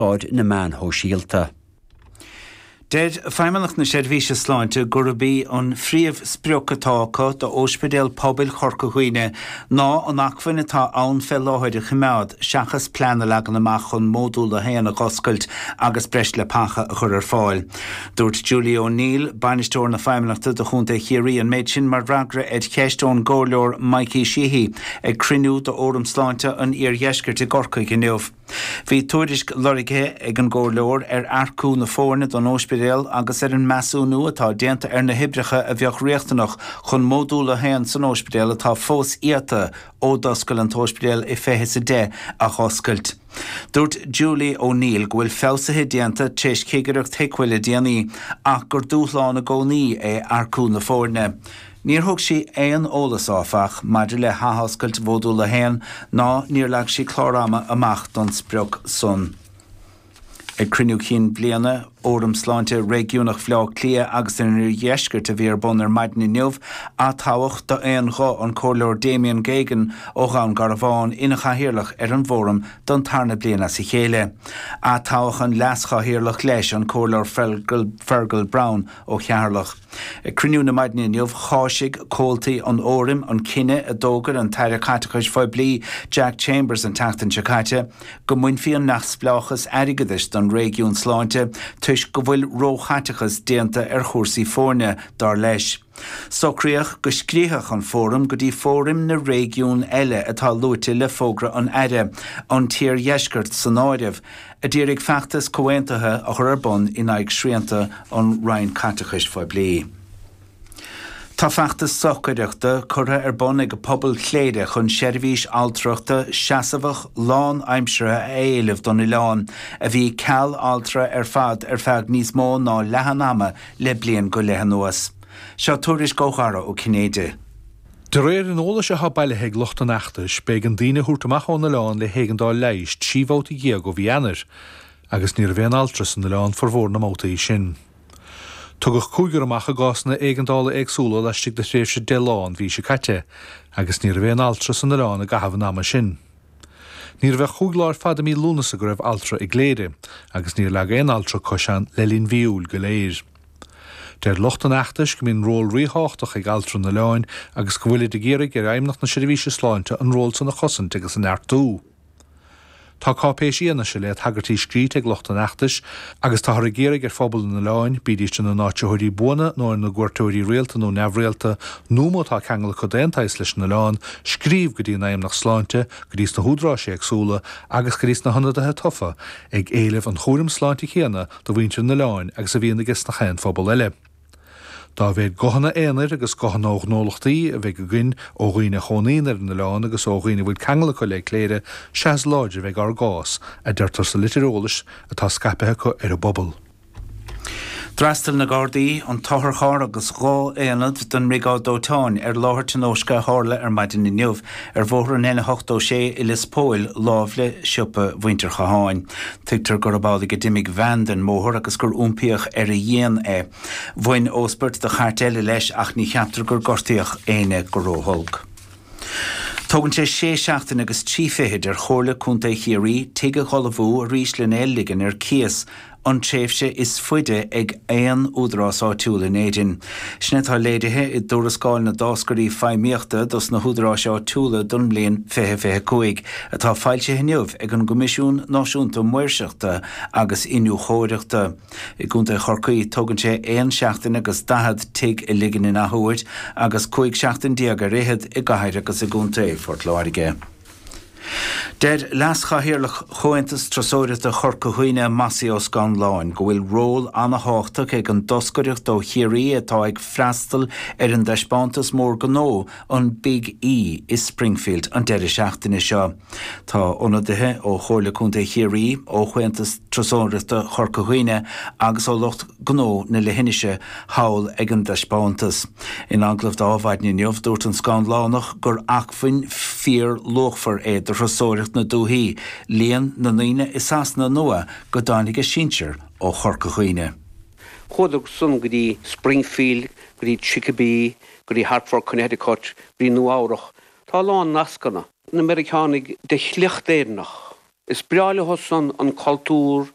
aird na meán shóisialta. Deir Feidhmeannacht na Seirbhíse Sláinte gurb í an phríomhsprioc atá acu d'Óispidéal Pobail Chorca Dhuibhne ná an acmhainn atá ann fé láthair a choimeád seachas plean a leagan amach chun Módúl a hAon a dh'oscailt agus breis leapacha a chur ar fáil. Dúirt Julie O'Neill, Bainisteoir na Feidhmeannachta do Chontae Chiarraí an méid sin mar fhreagra ar cheist ón gComhairleoir Mikey Sheehy ag cruinniú d'Fhóram Sláinte an Iardheiscirt i gCorcaigh inniu. Bhí tuairisc lorgtha ag an gComhairleoir ar earcú na foirne don óispidéal agus ar an measúnú atá déanta ar na hoibreacha a bheadh riachtanach chun módúl a haon san óispidéal atá fós iata ó d'oscail an t-óispidéal i fiche is a deich a dh'oscailt. Dúirt Julie O Neill go bhfuil feabhsuithe déanta t'réis chigireacht HIQA le déanaí ach gur dúshlán i gcónaí é earcú na foirne. Níor thug sí aon eolas, áfach, maidir le hathoscailt Mhódúl a hAon ná níor leag sí clár ama amach don sprioc san. Ag Cruinniú Cinn Bliana Fhóram Sláinte Réigiúnach Bhaile Átha Cliath agus an Oirdheiscirt a bhí ar bun ar maidin inniu atoghadh d'aon ghuth an Comhairleoir Damien Geoghegan ó Dhún Garbhán ina Chathaoirleach ar an bhFóram don tarna bliain as a chéile. Atoghadh an Leas-Chathaoirleach leis, an Comhairleoir Fergal Browne, ó Cheatharlach. Ag cruinniú na maidine inniu, cháisigh comhaltaí an Fhóraim an cinneadh a d'fhógair an tAire Caiteachais Phoiblí Jack Chambers an tseachtain seo caite, go mbainfí an neamhspleáchas airgeadais den réigiún sláinte toisc go bhfuil róchaiteachas déanta ar chúrsaí foirne, dar leis. Socraíodh go scríobhfadh an Fóram go dtí fóraim na réigiún eile atá luaite le fógra an Aire, an tIardheisceart san áireamh, a d'iarraidh feachtas comhaontaithe a chur ar bun in aghaidh srianta an Roinn Caiteachais Phoiblí. Tá feachtas stocaireachta curtha ar bun ag pobal Chléire chun seirbhís altrachta seasamhach lán-aimseartha a éileamh don oileán, a bhí ceal altra ar fad ar feadh níos mó ná leath an ama le bliain go leith anuas. Seo tuairisc ó Dhara Ó Cinnéide. De réir an eolais atá bailithe ag lucht an fheachtais, b'éigean daoine a thabhairt amach ón oileán le héigeandáil leighis trí bhabhta dhéag ó mhí Eanáir, agus ní raibh aon altra san oileán formhór na mbabhtaí sin. Tugadh cúigear amach i gcásanna éigeandála éagsúla laistigh de thréimhse deich lá an mhí seo caite, agus ní raibh aon altra san oileán i gcaitheamh an ama sin. Ní raibh ach cúig lá ar fad i mí Lúnasa go raibh altra i gCléire, agus níor leag aon altra cois ann le linn mhí Iúil go léir. Deir lucht an fheachtais go mbíonn ról ríthábhachtach ag altra an oileáin agus go bhfuilid ag iarraidh ar Fheidhmeannacht na Seirbhíse Sláinte an ról san a chosaint agus a neartú. Tá cáipéis fhianaise le tagairtí scríte ag lucht an fheachtais agus táthar ag iarraidh ar phobal an oileáin, bídís ina n-áitritheoirí buana nó ina gcuairteoirí rialta nó neamhrialta, nó má tá ceangal acu d'aon tsaghas leis an oileán, scríobh go dtí Feidhmeannacht Sláinte, go dtí sna húdaráis éagsúla agus go dtí sna hionadaithe tofa ag éileamh an chúraim sláinte céanna do mhuintir an oileáin agus a bhíonn aiges na haon phobal eile. Dá mhéad guthanna aonair agus guthanna ó ghnólachtaí a bheidh againn, ó dhaoine a chónaíonn ar an oileán agus ó dhaoine a bhfuil ceangal acu le Cléire, sea is láidre a bheidh ár gcás, a deirtear sa litir eolais atá scaipthe acu ar an bpobal. D'fhreastail na Gardaí, an t-otharcharr agus dhá aonad den mBriogáid Dóiteáin ar láthair tionóisce a tharla ar maidin inniu. Ar Bhóthar an N86 i Lios Póil, lámh le siopa mhuintir Chatháin, tuigtear gurb amhlaidh a d'imigh veain den mbóthar agus gur iompaíodh ar a dhíon é. Bhain óspairt de chairt eile leis ach ní cheaptar gur gortaíodh éinne go ró-holc. Tógann sé sé seachtaine agus trí fichid ar Chomhairle Contae Chiarraí tigh a dh'ullmhú arís lena ligean ar cíos an tréimhse is faide ag aon údarás áitiúil in Éirinn. Sin atá léirithe i dTuarascáil na dTáscairí Feidhmíochta dos na hÚdaráis Áitiúla don mbliain 2025 atá foilsithe inniu ag an gCoimisiún Náisiúnta Maoirseachta agus Iniúchóireachta. I gContae Chorcaí, tógann sé 1 seachtain agus 40 tigh a ligean in athuair agus 15 seachtain ar fhichead i gCathair agus i gContae Phort Láirge. Deir Leas-Chathaoirleach Chomhaontas Turasóireachta Chorca Dhuibhne, Massi Ó Scanláin, go bhfuil ról ana-thábhachtach ag an dtoscaireacht ó Chiarraí atá ag freastal ar an dtaispeántas mór gnó, an Big E, i Springfield an deireadh seachtaine seo. Tá ionadaithe ó Chomhairle Contae Chiarraí, ó Chomhaontas Turasóireachta Chorca Dhuibhne agus ó lucht. gnó na leithinise thall ag an dtaispeántas. In agallamh do Mhaidin inniu, dúirt an Scanlánach gur acmhainn fíorluachmhar é do thurasóireacht na dúthaí líon na ndaoine i Sasana Nua go dtáinig a sinsir ó Chorca Dhuibhne. Chuadar san go dtí Springfield, go dtí Chicopee, go dtí Hartford, Connecticut, go dtí Nua Eabhrach. Tá a lán nascanna. Na Meiriceánaigh de shliocht Éireannach. Is breá leo san an cultúr.